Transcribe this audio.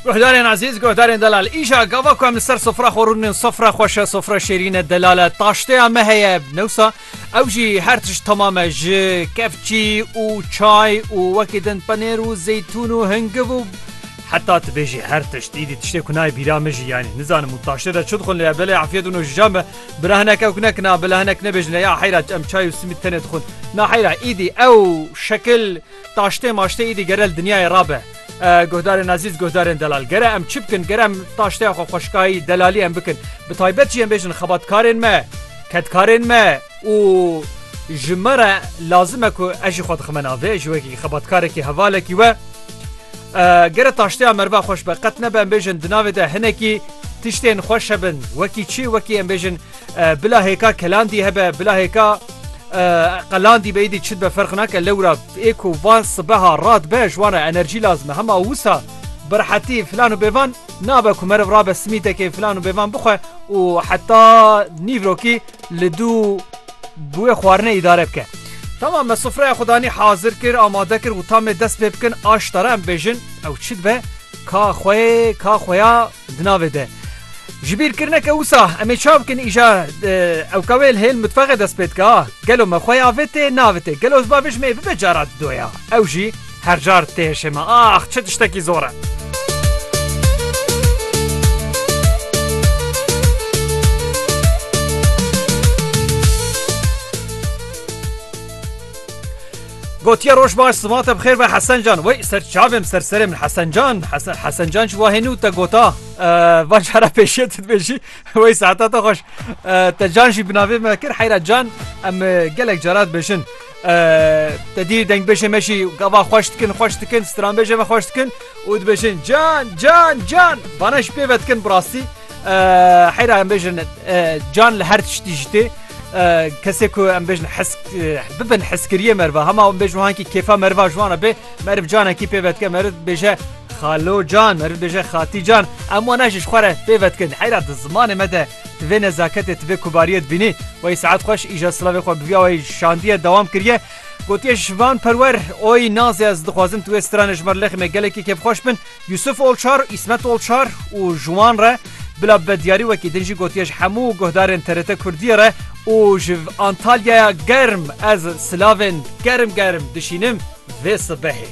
Guhdarên Azîz, guhdarên Delal îja gava ku em li ser sofra xwe rûnin sofra xweşe sofra şêrîne delale taşteya me heye newsa ew jî her tişt tamame ji kevçî û çay û wekî din penêr û zeytûn û hingiv û heta tibêjî her tişt îdî tiştê ku nayê bîra min jî yanî nizanim û taştê de çi dixwin lê belê efiyet û nojijan be bila hinek ew kinek na bila hinek nebêjin ya heyra em çay û simît tenê dixwin na heyra îdî ew şekil Taştê maştê îdî gere li dinyayê rabe. Guhdarên ezîz, guhdarên delal. Gere em çi bikin? Gere em taşteya xwe xweşikayî, delalî em bikin. Bi taybet jî em bêjin xebatkarên me, kedkarên me û ji me re lazim e ku ez jî xwe dixime navê ji wekî xebatkarekî hevalekî we. Gere taşteya merva xweş be qet nebe em bêjin di navê de hinekî tiştên xweş hebin. Wekî çi wekî em bêjin Bila hêka kelandî hebe bila hêka qelandî be êdî çi be ferq nake lewra ê ku va sibeha rat be ji wan re enerjî lazim e hema wisa birhetî filan û bêvan nabe ku meriv rabe simîtekê filan û bêvan bixwe û heta nîvrokî li dû bi wê xwarine îdare bike. Tamam me sofreya xwe danî hazir kir amade kir û tamê dest pê bikin aştara em bêjin ew çi dibe ka xwe ka xweya Di navê de jibîrkirineke wisa em ê ça bikin îja ewka wê li hêl mitfexê dest pê dike a gelo me xwe ya vê tê navê tê gelo ziba vê ji me bibe cara di doya ew jî her car tê hişê me ax çi tiştekî zor e. Gotiye roj baş siva te bixêr be Hesen can wey ser çavêm ser serê min Hesen can Hesen Hesen can ji wahê nû te gota va cara pêşiye tu dibêjî wey saeta te xweş te can jî bi navê me kir heyra can em gelek cara dibêjin te dî dengbêjê me jî gava xweş dikin xweş dikin stranbêjê me xweş dikin û dibêjin can can can vana ji pê ve dikin bi rastî Heyra em bêjin can li her tiştî ji tê kesê ku em bêjin hesk bibin heskiriye merva hema em bêjin hankî kêfa merva ji wan bê meriv canekî pê vetke meriv bêje xalo can meriv bêje xatî can em wan ji xwe re pê vetkin heyra di zimanê me de divê nezaketê divê kubariyê dibînî wey saet xweş îja silavê xwe biviya wey şandiye dewam kiriye gotiye ji van perwer oy nazê ez dixwazim tu wê stranê ji me lexîme gelekî kêfxweş bin Yusuf Olçar, Îsmet Olçar û ji wan re bila bi diyarî wekî din jî gotiye ji hemû guhdarên TRT Kurdiyê re û ji Antalyaya germ ez silavên germ germ dişînim vê sibehê.